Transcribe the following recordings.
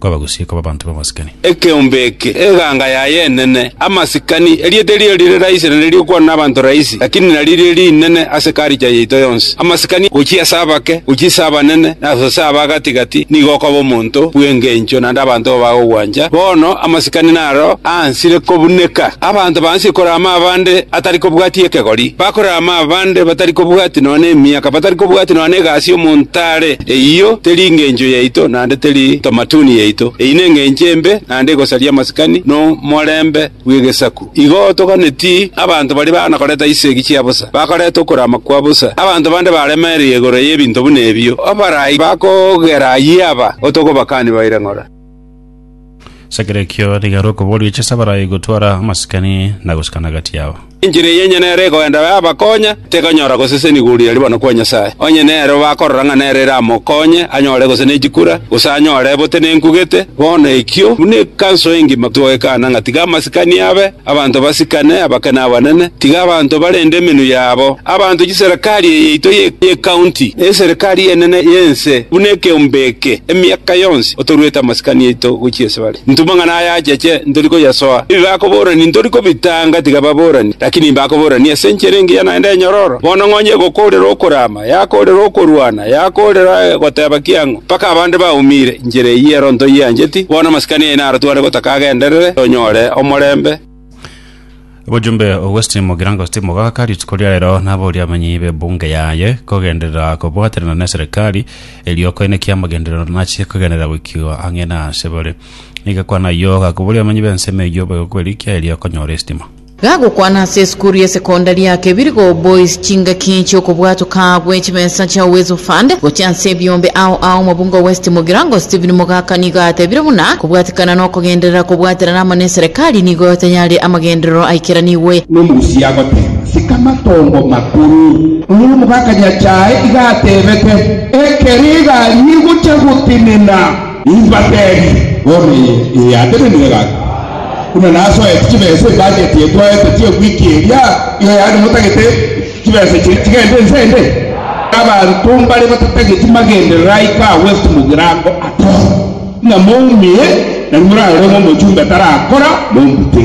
kwabagusie koba abanto b'amasikani. Ekeombe eke, eganga yaye enene, amasikani, erieta erio rire raisi na ririkwanwa nabanto raisi, lakini naririo rinene ase culture yaito yonsi. Amasikani, gochia ase abake, gochia ase abanene, na ase aba gati gati, nigo okoba omonto bw'engencho naende abanto bo bagogwancha. Bono amasikani naro aansire kobuneka. Abanto baansie korama abande atari kobwatia ekegori, bakorama abande batari kobwatia nonya nemiaka, batari kobwatia nonya negasi omonto are. Eyio teri engencho yaito. naende teri ntomatuni yaito. Eyio nengencho embe naende egosaria amasikani na omorembe bw'egesaku. Igo toganeti abanto baria bana koreta chisegi chia bosa, bakareta okorama kwa bosa. Abanto bande baremereire igoro y'ebinto buna ebio, abarai bakogera ayio aba, otokobakani baire ng'ora. As'ekero ekio nigo are okoboria oche ase abarai gotwara amasikani na gosikana gati yabo. Enchera eye onye nero egoenda yabakonya, tekonyora gosesenigwa oria are bono kwa Nyasae. Onye nero bakorora ng'a nero eramokonye anyore gose ne chikura, gose anyore botenenku gete, bono ekio buna ekanso engima togwekana ng'a tiga amasikani abe, Abanto basikane, abake na abanene, tiga abanto barende emenwa yabo, abanto chiserekari eye yaito y'ekaunti, na eserekari enene y'ense buna ekeombe eke, emiaka yonsi otoruete amasikani aito gochia ase bare. Intwe amang'ana aya acheche ntori koyasoa, ebi bakoborani ntori kobitanga, tiga baborani, lakini mbakoborani ase enchera engiya naende enyororo, bono ng'onye egokoorera okoraama. Yakoorera okorwana, yakoorera goteba kiang'o, mpaka abande baumire. Inchera eyio ero ntoyiancheti, bono amasikani aino aratware gotaka agenderere, tonyore omorembe. Obojumbe o West mogirango Steve Mogaka rituko ria rero naboria abamenyi b'ebunge yaye kogenderera kobwaterana ne serikali erio koine ki amagenderero nachie kogenderera goikigwa ang'e na asebare. Nigo kwana ayio gakoboria abamenyi b'ensemo eyio boigo kwerikia erio konyore estima. Gagokwana ase esukuru ya sekondari ya Kebirigo Boys chingaki chi'okobwatoka gwe chibesa chia Uwezo Fund gochia ase ebiombe ao ao Mabungo West Mugirango Stephen Mogaka nigo atebire buna kobwatikana nokogenderera kobwaterana amo neserikali nigo tayari amagenderero aikeranigwe. Nomogusi agoteema, Sika matongo makuru. Oyo nomogaka nyachae iga atebete, Ekero egari egocha gotenena. Nimbateebie, bono eye eye ateneneire gaki, buna nasoete chibesa ebajeti eye twaete chi'ewiki eria, igo yaani motagete chibesa chiria chigende inse ende? Abanto mbare batatageti magenderero aye ka West Mugirango atoro, ng'a moumie, na rimwe morarore ng'a omochumbe tarakora, mombute.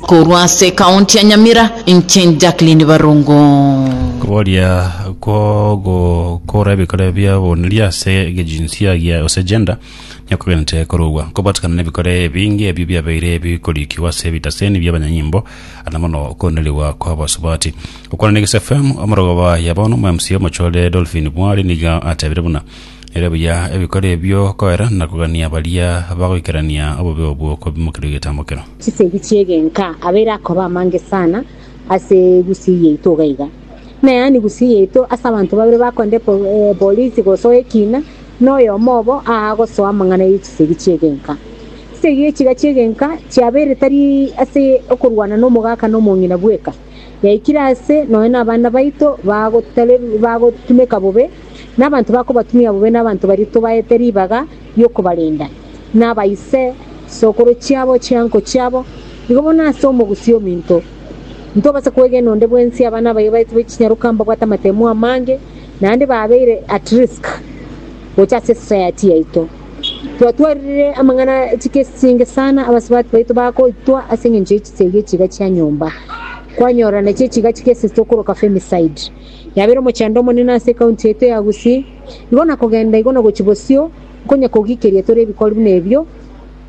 Korwa ase ekaonti ya Nyamira, inche Jacqueline Barongo. Koboria kw'ogokora ebikore bi'oboniria ase egejinsia gia gose gender nikogenete korogwa, kobatikana n'ebikore ebinge ebio biabeire bikorikigwa ase ebitaseni bi'abanyanyimbo na mono okonenerigwa kw'abasubati. Gokwana na Eges FM, omorogoba ya bono, omwa-MC omochore Dolphine Bwari nigo atebire buna, Ere buya ebikoro ebio koera na kogania baria bagoikerania obobe obwo kobimokerwa egetambo kero. Chisegi chi'egenka abe erakoba amange sana ase egusii yaito iga iga, na yaani gusii yaito ase abanto babere bakorenta epolisi gosoa ekina, na oyomo obo aa gosoa amang'ana ye chisegi chi'egenka. Chisegi echi iga chi'egenka chiabeire tari ase okorwana na omogaka na omong'ina bweka, yaikire aase nonya nabana baito bagotarer- bagotumeka bobe, na abanto bakobatumia bobe na abanto baria tobaete ribaga ri'okobarenda, na abaise sokoro chiabo chi'enko chiabo, igo bono ase omogusii ominto ntobasa kwegena onde bwensi abana abaye baito bachinyaroka mbabwate amatemo amange, naende babeire at risk gocha ase esociety yaito. Twatwarire amang'ana e chikesi chinge sana abasubati baito bagoitwa ase engencho ye chisegi e chiga chia nyomba. Kwanyora nachi echiga chikesi ase okoroka Femicide. Yabeire omochando omonene ase ekaunti yaito ya Gusii. Igo na kogenda igo na gochia bosio, nkonya kogikeria tore ebikori buna ebio,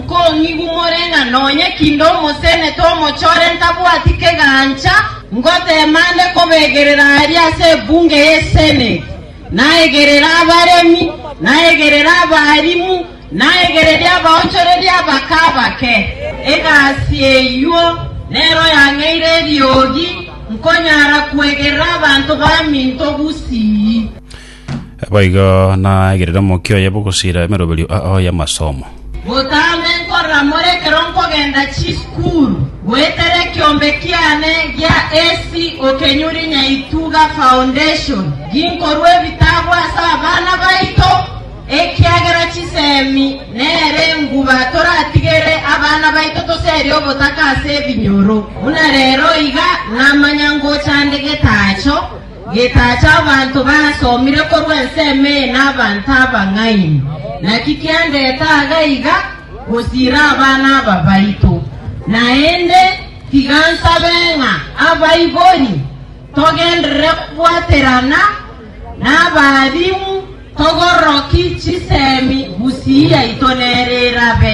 Nkong'igu more ng'a nonye kinde omosenete omochore ntabwati kegancha, ngoteema nde kobegerera aria ase ebunge y'Eseneti, naegerere abaremi, naegerere abaalimu, naegererie abaonchoreria abake abake. Egasi eyio nero yang'eire eriogi, nkonyara kwegerera abanto baminto gusii. Boigo naegerere omokia oye bw'ogosiira emeroberio ao y'amasomo. Botambe nkorora more ekero nkogenda chisukuru goetera ekiombe kiane gia AC Okenyuri Nyaituga Foundation ginkorua ebitabu ase abana baito ekiagera chisemi nere enguba toratigere abana baito toseria obotaka ase ebinyoro. Buna rero iga namanya ngocha nde getacho Getacha abanto basomire korwa ensemo eye n'abanto abang'aini, naki kiandete aaga iga gosiira abana aba baito. Naende tiga nsabe ng'a abaibori togenderere kobwaterana n'abaalimu, togororoki chisemi, gusii yaito nere erabe.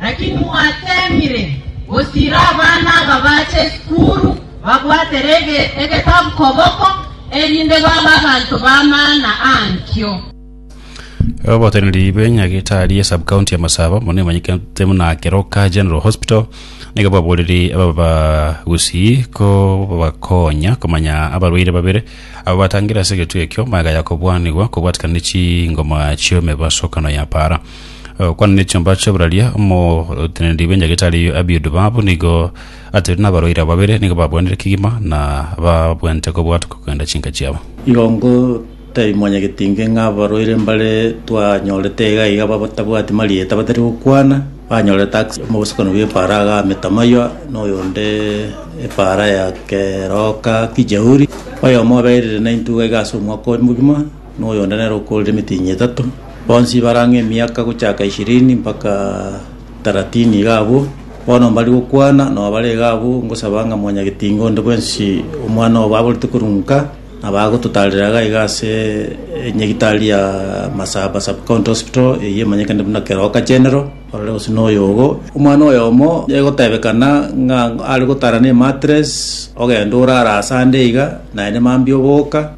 Naki mwateemire gosiira abana aba baache esukuru babwatere egetabu koboko, erinde babe abanto b'amaana ankio. Oboteneneri bwe nyagetari ya subcounty ya Masaba mono emanyekete muna Keroka General Hospital nigo bwaboreri aba bagusii ko bakonya komanya abarwaire babere abo batangire ase egetuo ekio magaya kobwanigwa kobwatikana ne chingoma chi'emebasokano ya para Okwana nechiomba chi'oboraria, omoteneneri bw'enyagitari eyo Abiud Baab nigo atebirie nabarwaire aba babere nigo babwanire kegima na babwente kobwatwa kogenda chinka chiabo. Igo ngoteebia mwanyagetinge ng'a abarwaire mbare twanyorete iga iga batabwati marieta batari gokwana, banyorete ase omosokani bw'epaara agame Tamayoa, na oyonde epaara ya Keroka Kijauri, oyomo oberire naintwe iga iga ase omwaka oye mogima, noyo onde nere okoorire emetienyi etato, bonsi bare ang'e emiaka gochaka ishirini mpaka taratini iga abwo. Bono mbari gokwana nao bare iga abwo, ngosaba ng'a Mwanyagetinga onde bwensi omwana obo aborete korwa nka, nabo agototaarera iga iga ase enyegitari ya Masaba Sub-County Hospital, eyio emanyekane buna Keroka General, ororo gose noyo ogo. Omwana oyomo egotebekana ng'a are gotara na ematress, ogenda orara ase ande iga, naende mambia oboka.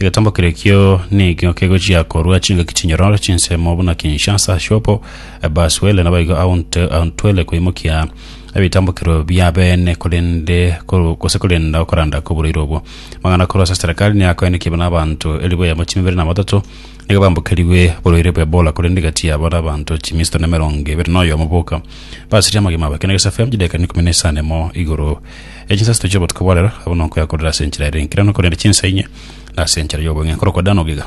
Egetomba keria ekio nigo kegochia korua chingaki chinyororo chinsemo buna Kinshasa, Shopo, Bas-Uele nabaigo Aunt- Auntwele koimokia ebitambokero bia bene korende koru- gose korenda okoranda kw'oboraire obwo. Amang'ana korwa ase serikali nigo akoenekia buna abanto elifu eyemo chimia ibere na batato nigo bambokerigwe oborwaire bwa Ebola korende egati yabo na abanto chimia isato na emerongo ebere na oyomo boka basirie amagima abo ekero negesafe chidaika ikomi na isano na emo igoro Echinsasito chi'obotuko bwa rero abwo nonkoyakorera ase enchera ere enkirano, korende chinsa inye nase enchera y'obong'e, nkorokwa Dano giga.